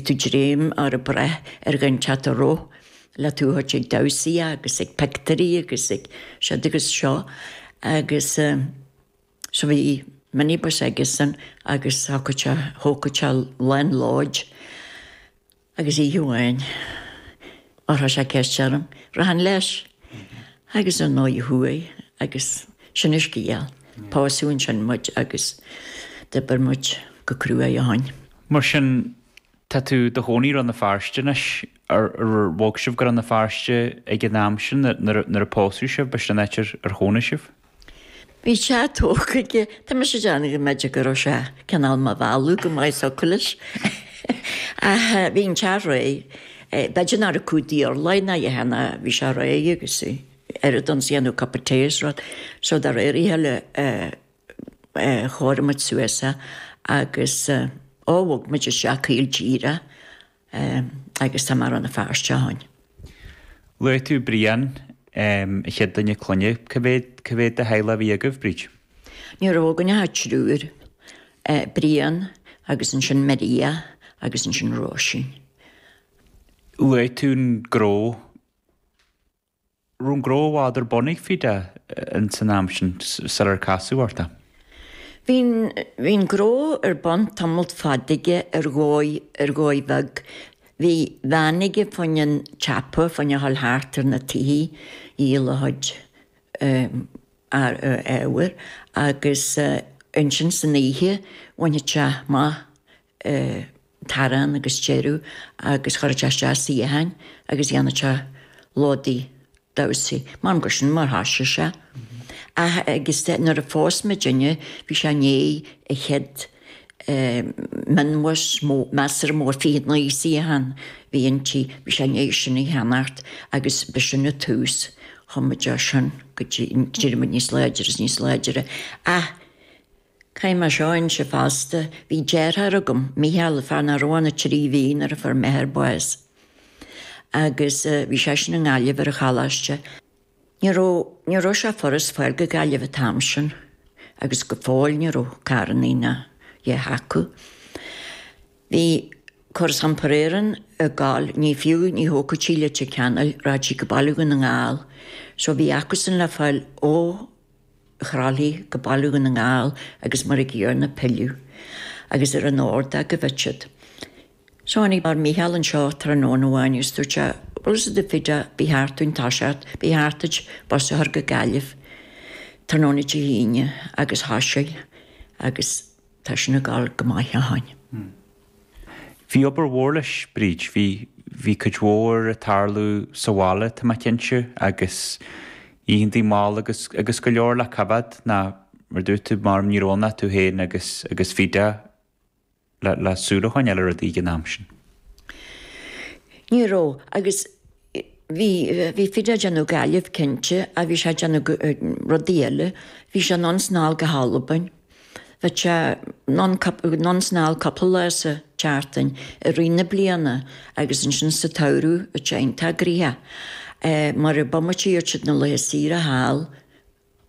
tú ag dréim nó ag brath ar ghan teat a roth le tú a thabhairt ag damhsaí agus ag pictiúirí agus ag siúd agus seo agus so bhí minibus aigesean agus thógfadh sé thógfadh sé lán lóid agus oíche amháin chuir sé ceist orm an rachainn leis agus ar ndóigh chuaigh agus sin an scéal. Pósadh ansin muid agus d'oibir muid go cruaidh ó shin. Mar sin, tá tú do chónaí i Rann na Feirste anois. Ar bhog sibh go Rann na Feirste ag an am sin nuair a pósadh sibh? Ab é sin an áit ar chónaigh sibh? Bhí sé tógtha aige, tá mise ag déanamh go mb'fhéidir go raibh sé cineál mar mhealladh go mbeadh so acu leis. Ach bhí an teach réidh, b'fhéidir nach raibh cuid d'Iarla é ná a dhath ann ach bhí sé réidh agus oiread agus a dhéanfadh cup of tea is rud, so de réir a chéile, chóirigh muid suas é agus ó bhog muid isteach caol díreach agus tá mé i Rann na Feirste ó shin. Luaigh tú Brian, an chéad duine clainne, cé mhéad, cé mhéad de theaghlach a bhí agaibh, Bríd? Ní raibh againn ach triúr, Brian agus ansin Maria agus ansin Róisín. Luaigh tú an gnó. raibh an gnó i bhfad ar bun ag Feda ins an am sin sular casadh ort é. Bhí bhí an gnó ar bun tamalt fada aige ar dhóigh, ar dhóigh bheag. Bhí veain aige faoi choinne an tsiopa, faoi choinne a ghabháil thart ar na tithe, ag díol a chuid earraí, ábhar, agus ansin san oíche bhainfeadh sé amach t-arán agus deireadh agus chuirfeadh sé isteach suíocháin agus dhéanfadh sé lódaí damhsaí. M'anam gur sin mar thosaigh sé. Ach agus de nuair a phós muidinne bhí sé i ndiaidh an chéad mionbhus mó, measartha mór, fiche naoi suíochán a bhí inti, bhí sé i ndiaidh sin a cheannacht agus ba sin an tús. Chuaigh muid as sin go dtí, d'éirigh muid níos láidre is níos láidre ach Caithfidh mé seo a inse fosta, Bhí deartháir agam, Micheál, fear nach raibh ann ach trí mhí nuair a fuair m'athair bás agus bhí seisean i nGaillimh ar an choláiste. Ní raibh, ní raibh sé furast fáil go Gaillimh an t-am sin agus go fóill ní raibh carrannaí ná a dhath acu. Bhí Córas Iompair Éireann ag gabháil, ní fiú, ní thiocfadh sí go Leitir Ceanainn, rachadh sí go Baile Dhún na nGall. So bhí acusan le fáil ó. Chroithlí go Baile Dhún na nGall agus mar a gcéanna ag pilleadh agus ar an ordóg go minic. So tháinig ár Mícheál anseo tráthnóna amháin agus dúirt sé, Bhfuil a fhios agat Feda ba cheart duit toiseacht, ba cheart duit bus a chur go Gaillimh tráthnóna Dé hAoine agus thoisigh agus tá sin ag gabháil go maith ó shin. Bhí obair mhór leis, Bríd. Bhí, bhí cuid mhór ag tarlú sa bhaile, tá mé cinnte, agus oícheantaí mall agus, agus go leor le coimheád ná mar a dúirt tú, maram ní raibh ann ach tú féin agus, agus Feda le, le súil a choinneáil ar rudaí ag an am sin. Ní raibh, agus Bhí, bhí Feda a' déanamh Gaillimh cinnte ach bhí sé a' déanamh rudaí eile, bhí sé anonn is anall go hAlbain, bheadh sé anonn, anonn is anall cúpla lá sa tseachtain i rith na bliana agus ansin sa tsamhradh bheadh sé iontach gnaitheach mar bomaite a gheobhadh siad na laetha saoire thall.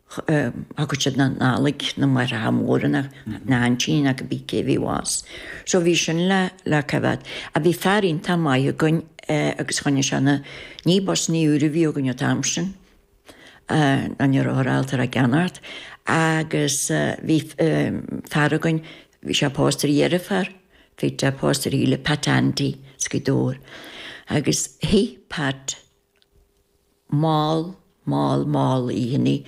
thiocfadh siad anall chuig na máithreacha móra, na haintíní agus cibé cé bhí abhus. So bhí sin le le coimheád. Ach bhí fear iontach maith againn agus choinnigh sé na, ní busannaí úra a bhí againn an t-am sin, ná ní rabhthar ábalta ar a gceannacht, agus bhí fear againn, bhí sé pósta ar dheirfiúr Feda, pósta ar Shíle, Pat Andy, as Gaoth Dobhair. Agus shuífeadh Pat Mall, mall, mall oícheantaí ag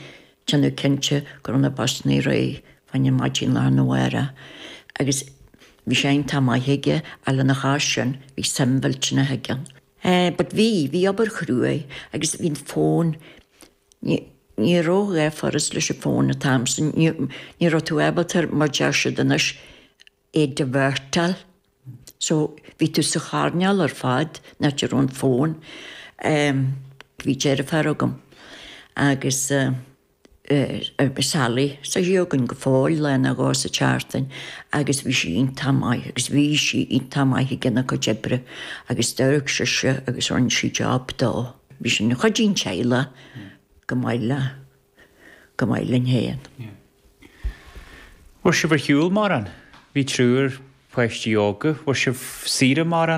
déanamh cinnte go raibh na busannaí réidh fá choinne maidin lá arna mháireach. Agus bhí sé iontach maith aige, ach lena chois sin bhí suim mhillteanach aige ann. Eh, but bhí, bhí obair chruaidh agus bhí an fón, ní, ní raibh a dhath furast leis an fón an t-am sin, ní, ní raibh tú ábalta, mar deir siad anois, é a dhivertáil. So, bhí tú sa choirnéal ar fad, ná tú ar an fón, em, bhí deirfiúr agam agus eh, eh, Sally tá sí againn go fóill, lá ná dhó sa tseachtain agus bhí sí iontach maith agus bhí sí iontach maith ag déanamh a cuid oibre agus d'oirfeadh sise agus rinne sí job dó, bhí sí ina cuid den teaghlach chomh maith le. chomh maith linn féin. An bhfuair sibh ar shiúl mórán? Bhí triúr páistí óga, an bhfuair sibh saoire mórán?